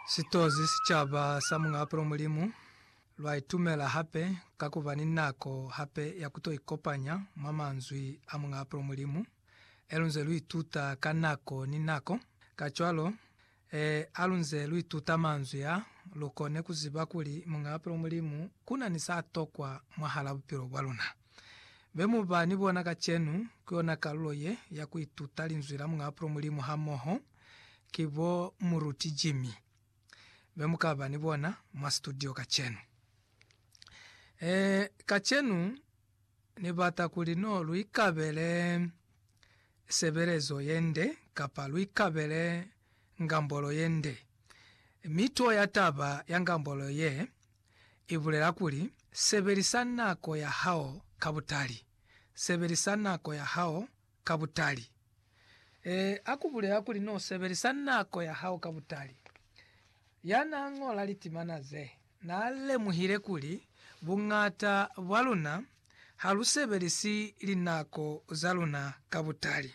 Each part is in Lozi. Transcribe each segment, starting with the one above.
Sitozi sicaba sa Muñ'a Bupilo Mulimu lwa itumela hape ka ku ba ni nako hape ya ku to ikopanya mwa manzwi a Muñ'a Bupilo Mulimu, e lu nze lu ituta ka nako ni nako. Kacwalo, e, ha lu nze lu ituta manzwi a, lu kone ku ziba kuli Muñ'a Bupilo Mulimu ku na ni sa tokwa mwahal'a bupilo bwa luna. Be mu ba ni bona kacenu ku yona kalulo ye ya ku ituta Linzwi la Muñ'a Apulo Mulimu hamoho ki bo Muruti Jimmy, be mu ka ba ni bona mwa situdio kacenu. Ee, kacenu Ni bata kuli no lu ikabele sebelezo ye nde, kapa lu ikabele ngambolo ye nde. Mi tuo ya taba ya ngambolo ye, i bulela kuli, Sebelisa nako ya hao ka butali. Sebelisa nako ya hao ka butali. Ee, a ku bulela kuli n'o sebelisa nako ya hao ka butali. Ya n'a ñola litimana ze, n'a lemuhile kuli buñata bwa luna ha lu sebelisi linako za luna ka butali.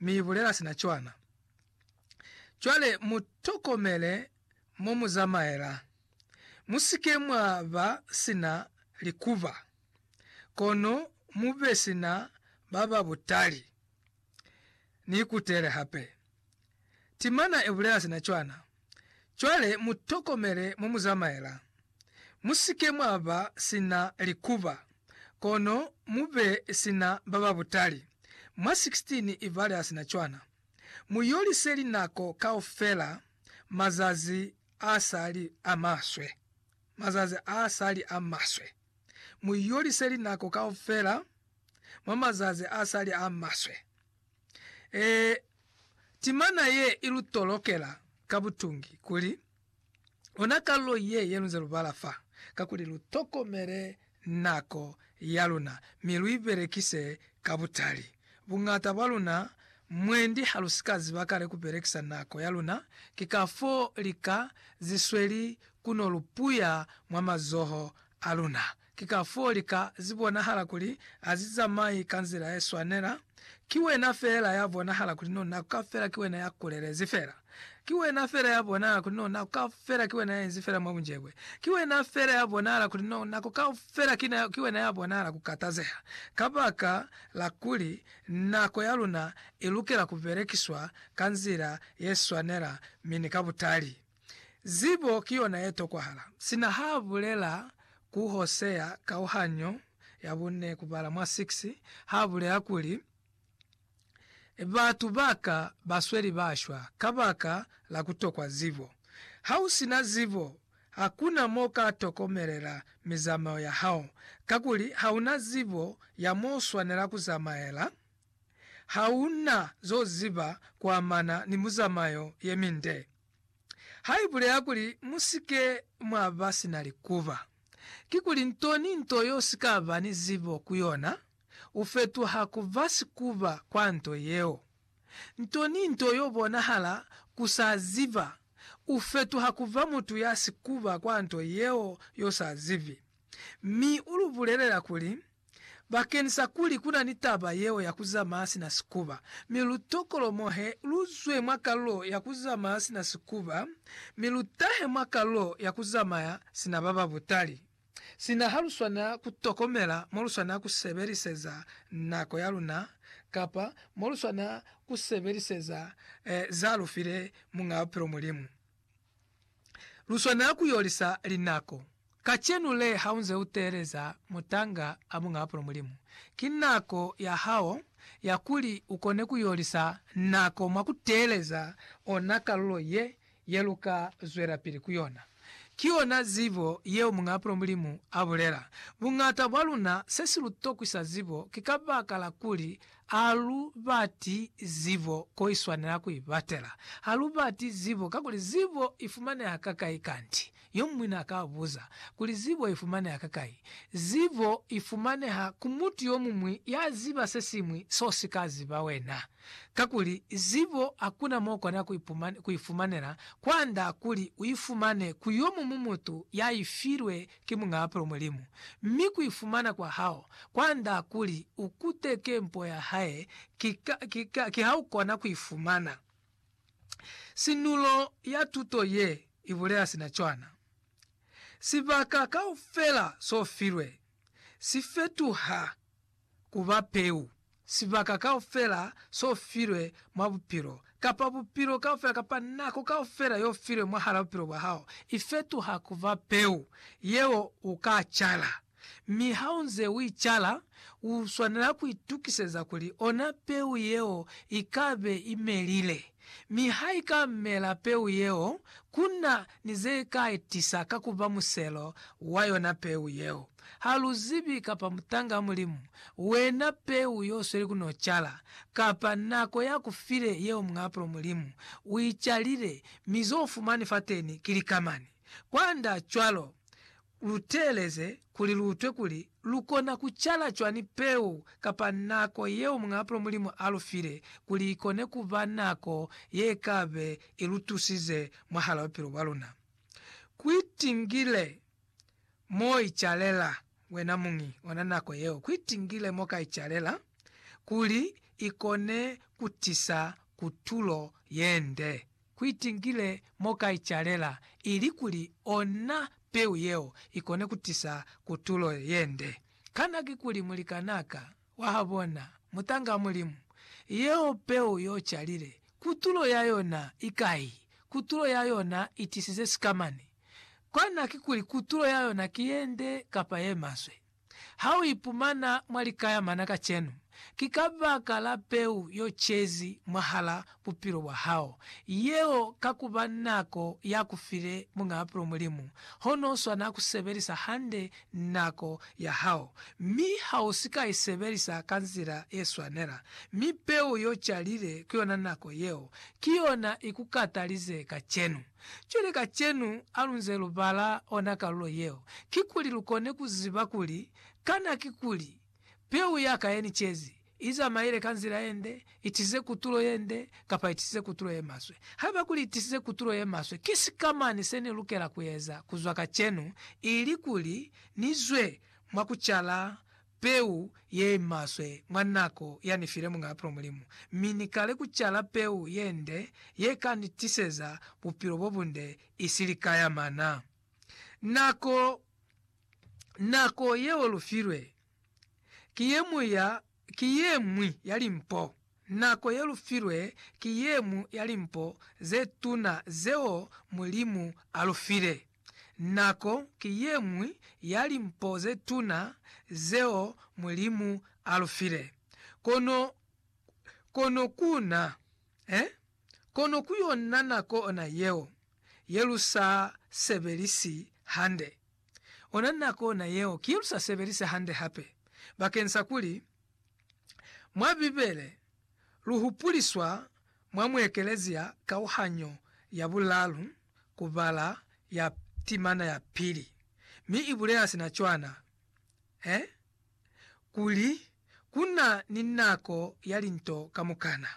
mi ibulela sina cwana. Cwale mutokomele momuzamaela. Musike mwa ba sina likuba, kono mube sina baba butali. Niikutele hape. Timana ibulela sina cwana. Cwale mutokomele momuzamaela. Musike mwaba sina likuba, kono mube sina bababutali. Mwa 16 ibale asina cwana. Muyolise linako kaufela mazazi asali amaswe. Mazazi asali amaswe. Muyolise linako kaufela mwa mazazi asali amaswe. Ee, timana ye i lu tolokela ka butungi kuli, Ona kalulo ye ye lunze lu bala fa, kakuli lu tokomele nako ya luna, mi lu i belekise ka butali. Buñata bwa luna mwendi ha lu si ka ziba kale ku belekisa nako ya luna, ki kafoo lika ze sweli ku no lu puya mwa mazoho a luna. Ki kafoo lika zibonahala kuli azizamai ka nzila yeswanela. Ki wena feela ya bonahala kuli no nako kafela ki wena ya kulelezi feela. Ki wena feela ya bonahala kuli no nako kafela ki wena ya inzi feela mwa bunjebwe. Ki wena feela ya bonahala kuli no nako kafela ki wena ya bonahala ku katazeha kabaka la kuli nako ya luna ilukela kubelekiswa ka nzila yeswanela mi ni ka butali. Zibo ki yona ye tokwahala. Sina ha bulela ku Hosea kauhanyo ya bune kubala mwa 6, ha bulela kuli, Batu ba ka ba sweli ba shwa kabaka la ku tokwa zibo. Ha u si na zibo, hakuna mo u ka tokomelela mizamao ya hao, kakuli ha u na zibo ya mo u swanela ku zamaela, ha u na zo ziba ku amana ni muzamayo ye minde. ha i bulela kuli, Mu si ke mwa ba si na likuba. Kikuli nto ni nto yo si ka ba ni zibo ku yona, u fetuha ku ba sikuba kwa nto yeo. Nto ni nto yo bonahala ku sa ziba, u fetuha ku ba mutu ya sikuba kwa nto yeo yo sa zibi. Mi u lu bulelela kuli, Bakeñisa kuli ku na ni taba yeo ya ku zamaya sina sikuba, mi lu tokolomohe, lu zwe mwa kalulo ya ku zamaya sina sikuba, mi lu tahe mwa kalulo ya ku zamaya sina ba ba butali. Sina ha lu swanela ku tokomela mo lu swanela ku sebeliseza nako ya luna kapa mo lu swanela ku sebeliseza za lu file Muñ'a Bupilo, Mulimu. lu swanela ku yolisa linako. Kacenu le ha u nze u teeleza mutanga a bunga apulo Mulimu, ki nako ya hao ya kuli u kone ku yolisa nako mwa ku teeleza ona kalulo ye ye lu ka zwelapili ku yona. Ki yona zibo yeo Muñ'a Apulo Mulimu a bulela. Buñata bwa luna se si lu tokwisa zibo ki kabakala kuli Ha lu bati zibo ko i swanela ku i batela. Ha lu bati zibo kakuli zibo i fumaneha kakai kanti? Yo muñwi n'a ka buza kuli, Zibo i fumaneha kakai? Zibo i fumaneha ku mutu yo muñwi ya ziba se siñwi s'o si ka ziba wena. Kakuli zibo ha ku na m'o kona ku i fumanela kwand'a kuli u i fumane ku yo muñwi mutu ya i filwe ki mung'ape o mulimu, mi ku ifumana kwa hao kwa nda kuli u kuteke mpo ya hae ki, ka, ki, ka, ki ha u kona ku ifumana. Sinulo ya tuto ye i bulela sina cwana. Sibaka kaufela so filwe si fetuha. ku ba peu, sibaka kaufela s'o filwe mwa bupilo, kapa bupilo kaufela, kapa nako kaufela y'o filwe mwahal'a bupilo bwa hao, i fetuha ku ba peu yeo u ka cala. Mi ha u nze u i cala, u swanela ku itukiseza kuli ona peu yeo i ka be i melile. Mi ha i ka mela peu yeo, ku na ni ze ka i tisa ka ku ba muselo wa yona peu yeo. Ha lu zibi kapa mutanga wa Mulimu, wena peu yo sweli ku no cala, kapa nako ya ku file yeo Muñ'a Apulo Mulimu u i calile, mi zo fumani fateni ki likamani. Kwand'a cwalo, lu teeleze kuli lu utwe kuli lu kona ku cala cwani peu kapa nako yeo Muñ'a Apulo Mulimu a lu file kuli i kone ku ba nako ye ka be i lu tusize mwahal'a bupilo bwa luna. Ku itingile Mo icalela wena muñi ona nako yeo kuitingile mo ka icalela kuli ikone kutisa kutulo yende. Kuitingile mo ka icalela ili kuli ona peu yeo ikone kutisa kutulo yende. Kana kikuli mulikanaka? Wahabona, mutanga Mulimu, yeo Peu yo calile, kutulo ya yona i kai? Kutulo ya yona i tisize sikamani. Cwana kikuli kutulo ya yona ki ye nde kapa ye maswe. Ha u ipumana mwa likaya mana kacenu, ki kabaka la Peu yo cezi mwahala bupilo bwa hao. Yeo ka ku ba nako ya ku file Muñ'a Bupilo Mulimu, hono u swana ku sebelisa hande nako ya hao, mi ha u si ka i sebelisa ka nzila ye swanela. Mi peu y'o calile ku yona nako yeo, ki yona i ku katalize kacenu. Cwale kacenu ha lu nze lu bala ona kalulo yeo, kikuli lu kone ku ziba kuli, Kana kikuli, peu ya ka ye ni cezi? i zamaile ka nzila ye nde, i tisize kutulo ye nde, kapa i tisize kutulo ye maswe. Haiba kuli i tisize kutulo ye maswe, ki sikamañi se ni lukela ku eza ku zwa kacenu ili kuli ni zwe mwa ku cala peu ye i maswe mwa nako ya ni file Muñ'a Bupilo Mulimu, mi ni kale ku cala peu ye nde ye ka ni tiseza bupilo bo bunde isili ka ya mana? Nako, nako yeo lu filwe. ki yeñwi ya, ki yeñwi ya limpo. Nako ye lu filwe ki yeñwi ya limpo ze tuna zeo Mulimu a lu file. Nako ki yeñwi ya limpo ze tuna zeo Mulimu a lu file. Kono, kono ku na, eh? Kono ku yona nako ona yeo, ye lu sa sebelisi hande. Ona nako na yeo ki lu sa sebelise hande hape bakeng sa kuli mwa Bibele lu hupuliswa mwa muekelezia kauhanyo ya bulalu ku bala ya timana ya pili, mi i bulela sina cwana, eh? kuli ku na ni nako ya linto kamukana,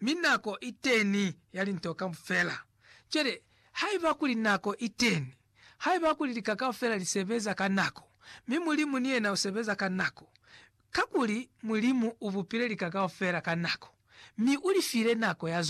mi nako i teñi ya linto kaufela. Cwale, haiba kuli nako i teñi, haiba kuli lika kaufela li sebeza ka nako, mi Mulimu ni yena u sebeza ka nako, kakuli Mulimu u bupile lika kaufela ka nako, mi u li file nako ya zona.